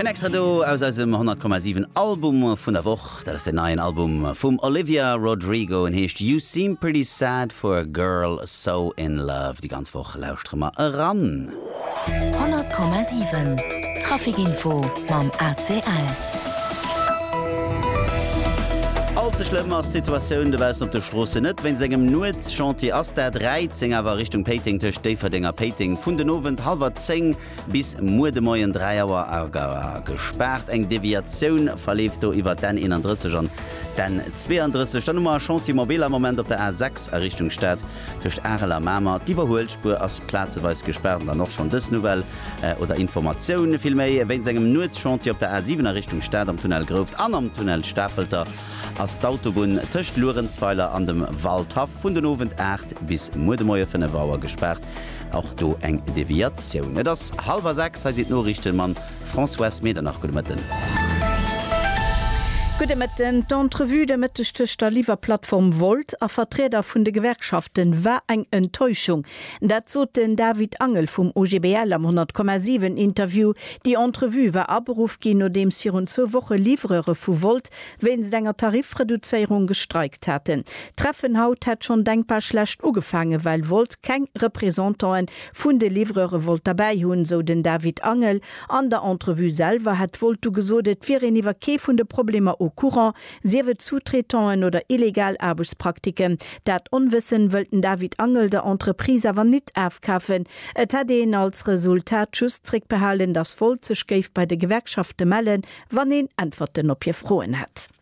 En extra do aus eisem 100,7 Album vun der Woch. Dat ass den neien Album vum Olivia Rodrigo. En heescht You Seem Pretty Sad for a Girl So In Love. Déi ganz Woch lauschtere mer eran. 100,7 Trafic Info mam ACL. All ze schlëmm ass d'Situatioun dobaussen op de Stroossen net. Wéinst engem Nuetschantier ass d'A 13 awer a Richtung Péiteng tëscht Déifferdeng a Péiteng vun den Owend hallwer 10 bis muer de Moien 3 Auer gespaart. Eng Deviatioun verleeft do iwwer d'N 31 an d'N 32. Dann hu mer e Chantier mobile am Moment op der A 6 a Richtung Stad. Tëscht Arel a Mamer, d'Iwwerhuelspuer ass plazeweis gespaart an dann och schonn dës Nouvelle oder Informatioun villméi. Wéinst engem Nuetschantier op der A 7 a Richtung Stad am Tunnel Grouft an am Tunnel Stafelter ass d'Autobunn tëscht Luerenzweiler an dem Waldhaff vun den Owend 8 bis muer de Moie 5 Auer gespaart. Och do eng Deviatioun. Et ass hallwer 6, hei sinn d'Noriichten mam. Françoise Medernach, gudde Mëtten. Gudde Mëtten. D'Entrevue de Mëtteg tëscht der Liwwerplattform Wolt a Vertrieder vun de Gewerkschafte war eng Enttäuschung. Dat sot den David Angel vum OGBL am 10,7 Interview. Déi Entrevue war aberuff ginn, nodeems virun zwou Woche Livreure vu Wolt wéinst enger Tarifreduzéierung gestreikt haten. D'Treffen haut hätt schonn denkbar schlecht ugefaangen, well Wolt keng Representanten vun de Livreure wollt derbäi hunn, esou den David Angel. An der Entrevue selwer hätt d'Voltu gesot, et wier een iwwer kee vun de Problemer au courant, sief et Sous-traitanten oder illegal Aarbechtspraktiken. Dat Onwëssen wëllt den David Angel der Entreprise awer nit afkafen. Et hätt een als Resultat just zréckbehalen, datt Volt sech géif bei de Gewerkschafte mellen, wann een Äntwerten op hir Froen hätt.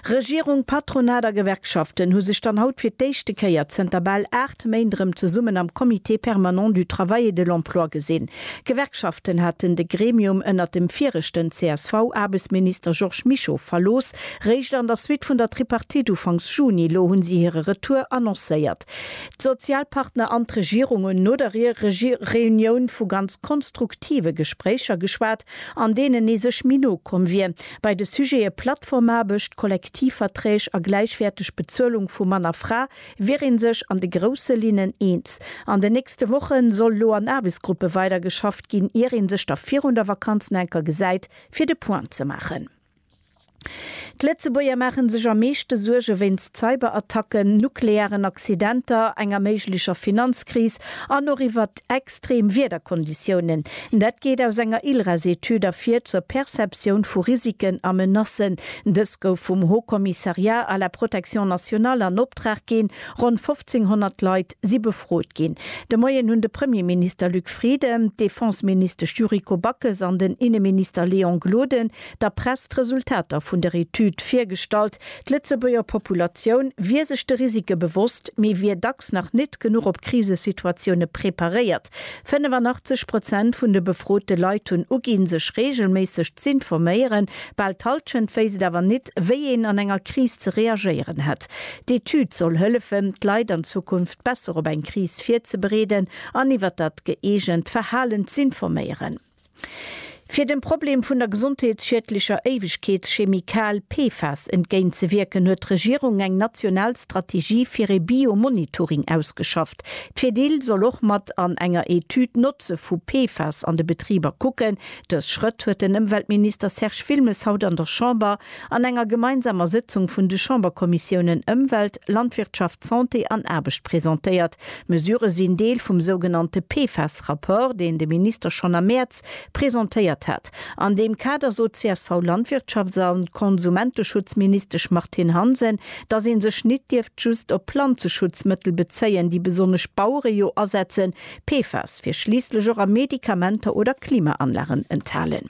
Regierung, Patronat a Gewerkschaften hu sech dann haut fir d'éischte Kéier zënter bal aacht Méint erëm zesummen am Comité permanent du travail et de l'emploi gesinn. D'Gewerkschaften haten de Gremium ënnert dem viregten CSV-Aarbechtsminister Georges Mischo verlooss. Réischt an der Suite vun der Tripartite ufanks Juni elo hunn si hire Retour annoncéiert. D'Sozialpartner an d'Regierung hunn no der Reunioun vu ganz konstruktive Gespréicher geschwat, an deenen ee sech méi no komm wier. Bei de Sujete Plattformaarbecht, Kollektivverträg a gläichwäerteg Bezuelung vu Mann a Fra wier ee sech an de grousse Linnen eens. An den nächste Woche soll elo an Aarbechtsgruppe weider geschafft ginn, ier ee sech da virun der Vakanz nach eng Kéier gesäit, fir de Point ze maachen. D'Lëtzebuerger maache sech am meeschte Suerge wéinst Cyberattacken, nuklearen Accidenter, enger méiglecher Finanzkris An och iwwert extrem Wiederkonditiounen. Dat geet aus enger ILRES-Etüd ervir zur Perceptioun vu Risiken a Menacen. Dës gouf vum Haut Commissariat à la protection nationale an Optrag ginn. Ronn 1.500 Leit si befrot ginn. De Moien hunn de Premierminister Luc Frieden, d'Defenseministesch Yuriko Backes an den Inneminister Léon Gloden der Press d'Resultater vun der Etüd virgestallt. D'Lëtzebuerger Populatioun wier sech de Risike bewosst, mee wier dacks nach nit genuch op Krisesituatioune preparéiert. 85 Prozent vun de befrote Leit hunn uginn, sech reegelméisseg z'informéieren. Bal d'Hallschent wéisst et awer nit, wéi een an enger Kris ze reagéieren hätt. D'Etüd soll hëllefen, d'Leit an Zukunft besser op eng Kris virzebereeden an iwwer dat gëeegent Verhalen z'informéieren. Fir dem Problem vun der gesondheetsschiedlecher Éiwegkeetschemie Kal, PFAS, entgéint ze wierken, huet d'Regierung eng national Strategie fir ee Biomonitoring ausgeschafft. D'Fedil soll och mat an enger Etüd d'Notze vu PFAS an de Betriber kucken. Dës Schrëtt huet den Ëmweltminister Serge Wilmes haut an der Chamber an enger gemeinsamer Sëtzung vun de Chamberkommissiounen Ëmwelt, Landwirtschaft, Santé an Aarbecht presentéiert. D'Mesurë sinn Deel vum sougenannte PFAS-Rapport, deen de Minister schonn am Mäerz presentéiert hat. An deem Kader sot d'CSV-Landwirtschafts a Konsumenteschutzministesch Martine Hansen, datt ee sech nit dierft just op Planzeschutzmëttel bezéien, déi besonnesch Bauere jo asetzen. PFAS wier schliisslech och a Medikamenter oder Klimaanlagen enthalen.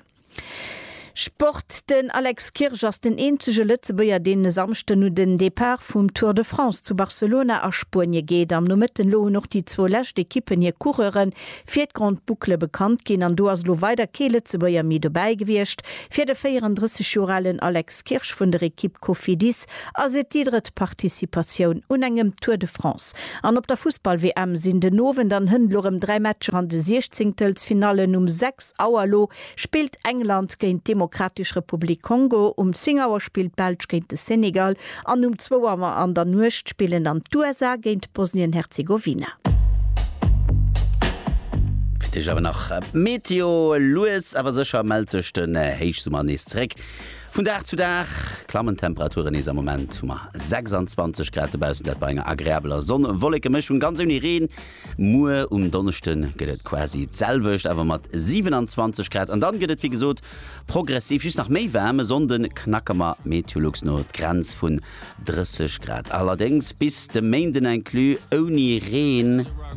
Sport, Den Alex Kirsch ass den eenzege Lëtzebuerger, deen e Samschden no den Depart vum Tour de France zu Barcelona a Spuenie geet. Am Nomëtten elo hunn och déi zwou lescht Ekippen hir Coureure fir d'Grande Boucle bekannt ginn an do ass elo weider kee Lëtzebuerger méi dobäi gewiescht. Fir de 34 Joer alen Alex Kirsch vun der Ekipp Cofidis ass et déi drëtt Participatioun un engem Tour de France an op der Fussball-WM sinn den Owend an Hënt lo rëm dräi Matcher an de Siechzéngtelsfinallen. Um 6 Auer lo spillt England géint d'Demokratesch Republik Kongo, um 10 Auer spillt d'Belsch géint de Senegal an um 2 Auer an der Nuecht spillen dann d'USA géint Bosnien-Herzegowina. Fir d'éischt awer nach d'Meteo, Lues awer sécher mellt sech den Héichsummer nees zeréck. Vun Dag zu Dag klammen d'Temperaturen nees. Am Moment hu mer 26 Grad dobaussen, dat bei enger agreabeler Sonn-Wolleke-Mëschung, ganz ouni Reen. Muer um Donneschde gëtt et quasi d'selwecht, awer mat 27 Grad. An dann gëtt et wéi gesot progressiv just nach méi waarm. E Sonnde knacke mer Meteolux no d'Grenz vun 30 Grad, allerdéngs bis de Méinden inclus ouni Reen.